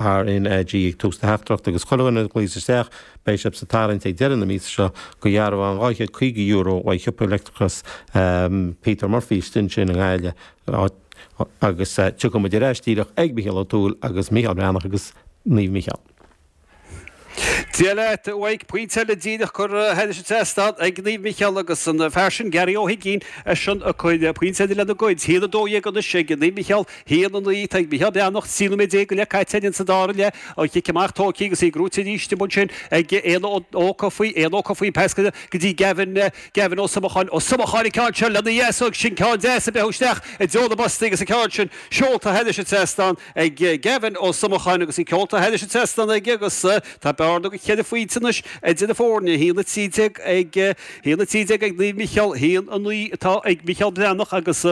RnaG ag tús na tráchtaireachta agus chuile dhuine a ghlaoigh isteach, beidh siad sa tarraingt ag deireadh na míosa seo go dhearbhán €250 uaidh shiopa leictreachais Peter Murphy, istigh ansin i nGaillimh, agus tiocfaidh muid ar ais díreach ag Mícheál Ó Tuathail agus Mícheál Breathnach agus Naomh Mícheál. Dia leat, uaidh. Pointe eile díreach curtha thairis an trasnán ag Naomh Micheál agus an fear sin Gary Ó hUigínn ansin ag cur pointe eile lena gcuid. Haon a dó dhéag anois ag Naomh Micheál, haon a naoi. Tá ag Micheál Breathnach trí nóiméad déag go leith caite againn insa dara leath. An chic amach tógtha agus í buaite arís amuigh ansin ag Éanna Ó Cofaigh. Pas go dtí Gavin, Gavin Ó Somacháin. Ó Somacháin an ceann seo lena dheasóg agus sin ceann deas a breacadh isteach i dtreo na bpostaí agus an ceann sin seolta thairis an trasnán. ag Gavin Ó Somacháin agus í seolta thairis an trasnán aige agus tá bearna go cheithre phointe anois idir na foirne, 1:13 ag 1:13 ag Naomh Micheál, 1:09 atá ag Micheál Breathnach agus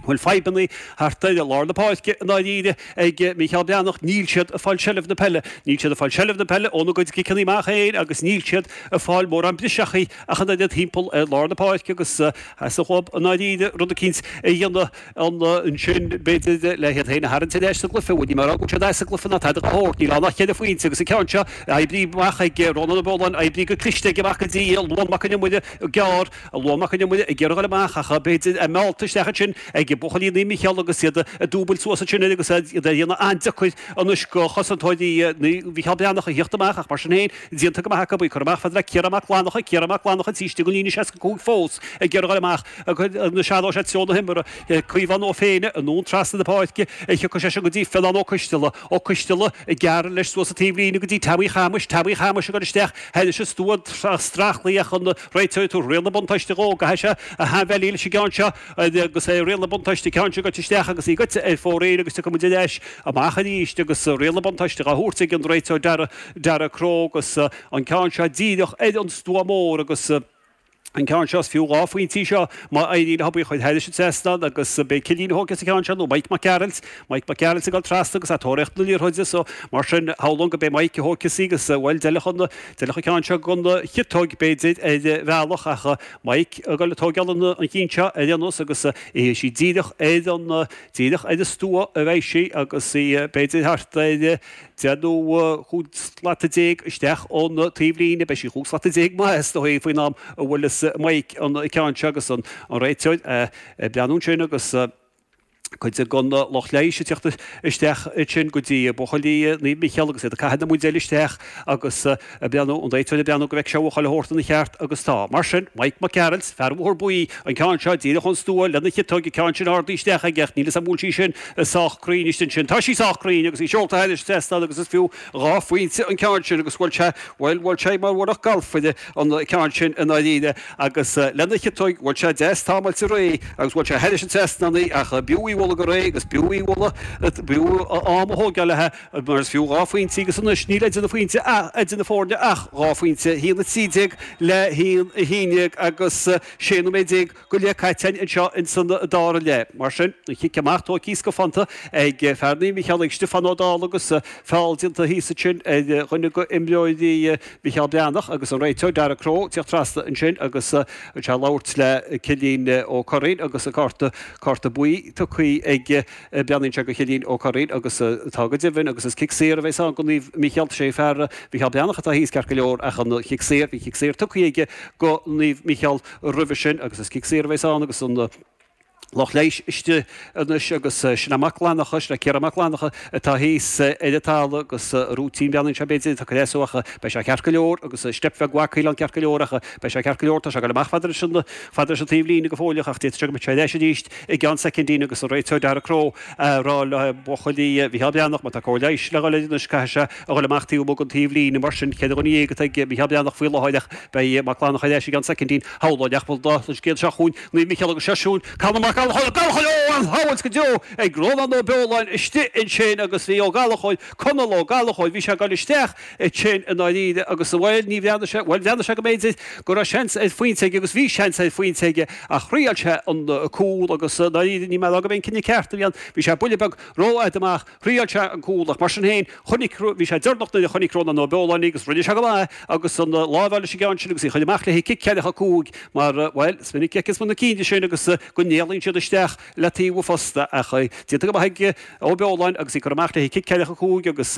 bhuel fadhbanna thart ar lár na páirce i ndáiríre ag Micheál Breathnach. Níl siad ag fáil seilbh na peile. Níl siad ag fáil seilbh na peile óna gcuid ciceanna amach féin agus níl siad ag fáil mórán briseachaí ach an oiread thimpeall ar lár na páirce agus sa ghob i ndáiríre, rud eicínt a dhéanamh. Ansin, b'fhéidir le hiad féin a tharraingt ar ais sa gcluiche, bhuel, ní mar a fhágann siad as an gcluiche ná tada dá shórt, níl ann ach ceithre phointe agus an ceann seo oibrithe amach ag Rónán Ó Beoláin, oibrithe go cliste aige amach go dtí Luan Mac Con Iomaire, gearr, Luan Mac Con Iomaire ag iarraidh í a fháil amach ach b'fhéidir a mheallta isteach ansin ag buachaillí Naomh Micheál agus iad ag dúbailt suas ansin air agus iad dhá dhéanamh an-deacair anois go chosantóirí Naomh Mhicheál Breathnach a theacht amach ach mar sin féin, déanta go maith acu, ag cur amach fad le Ciarán Mac Fhlannacha, Ciarán Mac Fhlannacha thairis an líne 65 fós ag iarraidh í a fháil amach. Anois athróidh sé treo na himeartha, Caomhán Ó Féinne anonn trasna na páirce, tiocfaidh seisean go dtí Fionán Ó Coisteala, Ó Coisteala ag gearradh leis suas an taobhlíne go dtí Teaimí Shéamais, Teaimí Shéamais ag cur isteach thairis an stua streachailt ach an réiteoir ag tabhairt riail na buntáiste dhó? Caithfidh sé a shainbheilí leis an gceann seo agus é, riail na buntáiste, ceann seo gaibhte isteach agus í gaibhte ar fóraoil agus tiocfaidh muid ar ais amach arís agus riail na buntáiste dhá thabhairt ag an réiteoir, Darragh Crowe, agus an ceann seo díreach ar an stua mór agus. an ceann seo. Is fiú dhá phointe í seo má éiríonn leob í a chur thairis an trasnán agus ab é Cillín a thógfas an ceann seo nó Mike Mac Gearailt, Mike Mac Gearailt ag dul trasna agus ag tóraíocht na liathróide so mar sin shamhlóinn gurb é Mike a thógfas í agus bhuel d'fheilfeadh an, d'fheilfeadh an ceann seo don chiotóg b'fhéidir ar bhealach ach Mike ag dul ag tógáil an chinn seo ar aon nós agus beidh sí díreach ar an, díreach ar an stua a bheidh sí agus í b'fhéidir thart ar. Déarfainn chúig slata déag isteach ón taobhlíne. Beidh sí chúig slata déag maith, is dóigh, faoin am a bhuaileas Mike an ceann seo agus an réiteoir ag breathnú ansin agus cuid den lucht leighis ag teacht isteach ansin go dtí buachaillí Naomh Micheál agus iad ag caitheamh na mbuidéil isteach agus ag breathnú ón taobh, ag breathnú go mbeidh sé seo abhaile a thabhairt ina cheart, agus tá. Mar sin, Mike Mac Gearailt, fear Bhóthar Buí, an ceann seo, díreach ón stua, lena chiotóig, an ceann sin ardaithe isteach aige, ach níl 'fhios a'm an bhfuil sí sin sách cruinn, anois ansin, tá sí sách cruinn, agus í seolta thairis sa tseastán, agus is fiú dhá phointe an ceann sin, agus bhuail sé, bhuail, bhuail sé mar bheadh gailf an ceann sin i ndáiríre, agus lena chiotóig, bhuail sé deas támáilte réidh, agus bhuail sé thairis an tseastán í, ach b'fhiú í bhualadh go réidh, agus b'fhiú í bhualadh, b'fhiú a am a thógáil léithi. Mar is fiú dhá phointe agus anois níl idir na pointe ah idir na foirne ach dhá phointe, 1:13 le 1:11 agus 16 nóiméad go leith caite anseo in san dara leath. Mar sin, an cic amach tógtha thíos go pointe ag fear Naomh Micheál ag Stiofán Ó Dálaigh agus feall déanta thíos ansin ar dhuine de imreoirí Micheál Breathnach agus an réiteoir Darragh Crowe teacht trasna ansin agus é ag labhairt le Cillín Ó Curraoin agus an cárta cárta buí tugtha ag Breathnaíonn sé go Cillín Ó Curraoin agus tá go deimhin agus is cic saor a bheas ann go Naomh Mícheál, sé fear Mícheál Breathnach atá thíos ceart go leor ach an cic saor, bhí cic saor tugtha aige go Naomh Mícheál roimhe sin agus is cic saor a bheas ann agus an lucht leighis istigh anois agus sin é Mac Fhlannacha, sin é Ciarán Mac Fhlannacha atá thíos ar an talamh agus rúitín bhreathnaíonn sé b'fhéidir tá cleasú ach beidh sé ceart go leor agus step bheag mhaith caoileán ceart go leor ach beidh sé ceart go leor tá sé ag goil amach fad leis an Fad leis an taobh líne go fóilleach ach d'fhéadfadh sé go mbeadh sé ar ais arís i gceann soicindí agus an réiteoir Dara Crowe ag rá le buachaillí Mhicheál Breathnach má tá cóir leighis le dhul air anois caithfidh sé a dhul amach taobh amuigh den taobh líne. Mar sin, ceithre dhuine dhéag atá ag Micheál Breathnach faoi láthair ach beidh Mac Fhlannacha ar ais i gceann soicindín. Shamhlóinn nach bhfuil do chuid géilleadh seo chugainn, Naomh Micheál agus seisiún Conall Ó Gallachóir. Ó Gallachóir sábháil go deo ag Rónán Ó Beoláin istigh ansin agus bhí Ó Gallachóir, Conall Ó Gallachóir, bhí sé ag dul isteach é sin i ndáiríre, agus amhail ní bhreathnaigh sé, bhuel, bhreathnaigh sé go mb'fhéidir go raibh seans ar phointe aige agus bhí seans ar phointe aige ach thriail sé an cúl agus i ndáiríre níl mé ag rá gurbh é an cinneadh ceart a bhí ann, bhí sé buille beag rófhada amach, thriail sé an cúl ach mar sin féin chonaic, bhí sé dearnach nuair a chonaic Rónán Ó Beoláin agus rinne sé go maith agus an lámh leis an gceann sin agus í a chur amach le cic ceithre cúig mar, bhuel, is minic cic is mo na cinn de sin agus go n-éalaíonn siad isteach le taobh posta ach déanta go maith ag Ó Beoláin agus í curtha amach le cic ceithre cúig agus.